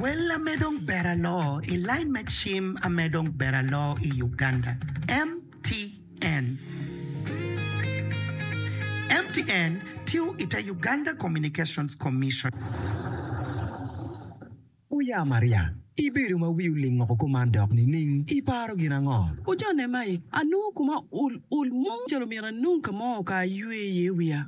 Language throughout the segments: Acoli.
Wella me dong ber aloo i line me cim a me dong ber aloo i Uganda, MTN. MTN tiyo i te Uganda Communications Commission. Uya Maria, ibedo ma wi oling oko kuman dok nining? Iparo gin ango? Ujone mai, anongo kuma ul ul mo calo myero anong ka mo ka aywe iye wiya.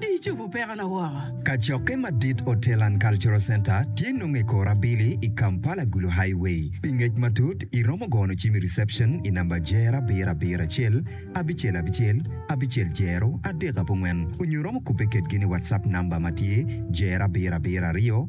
Di cobo pekona woko. Kacokke madit Hotel and Cultural Centre tye nongo i kor abili i Kampala Gulu Highway. Pi ngec matut i romo gono cim i reception i namba Jer abiro abiro acel abicel abicel abicel Jero adek abongwen onyo romo kubbe kedgi ni WhatsApp namba matye Jer abiro abiro aryo